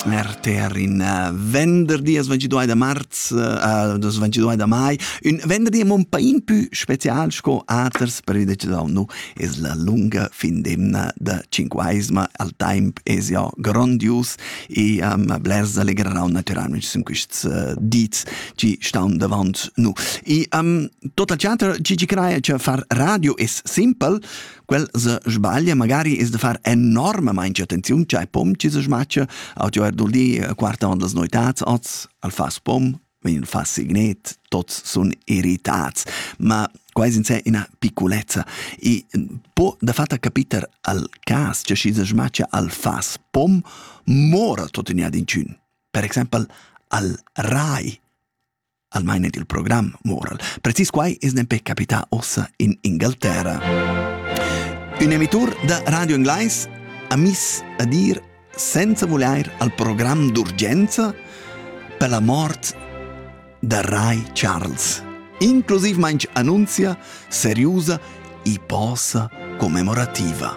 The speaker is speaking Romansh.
L'RTR in eh, venderdi as 22 da marz uh, das 22 da mai ün venderdi mon pain pü special sco aters previdet da nu es la lunga fin d'emna da cinquaisma al temp es ja grandius e um, blers allegrerau natüralmente sun quists uh, dits chi staun davant nu e um, total teater chi ci craia cha far radio es simpel Quel se sbaglia magari es da far enormamaing attenziun ch'ai pom chi se schmatcha, auto er dul di a quarta on las noitats oz, al fas pom, vegn fa signet, tots sun irritats, ma quais in sé ina piccolezza. I po da fatta capiter al cas che chi se schmatcha al fas pom mora tot in ad incun. Per exempel al rai almain ed il program moral. Precis quai es nempe capità ossa in Ingalterra. Un emitur da Radio Englais ha miss a dir senza volair al program d'urgenza per la mort da Rai Charles, inclusiv mainch annunzia seriusa e posa commemorativa.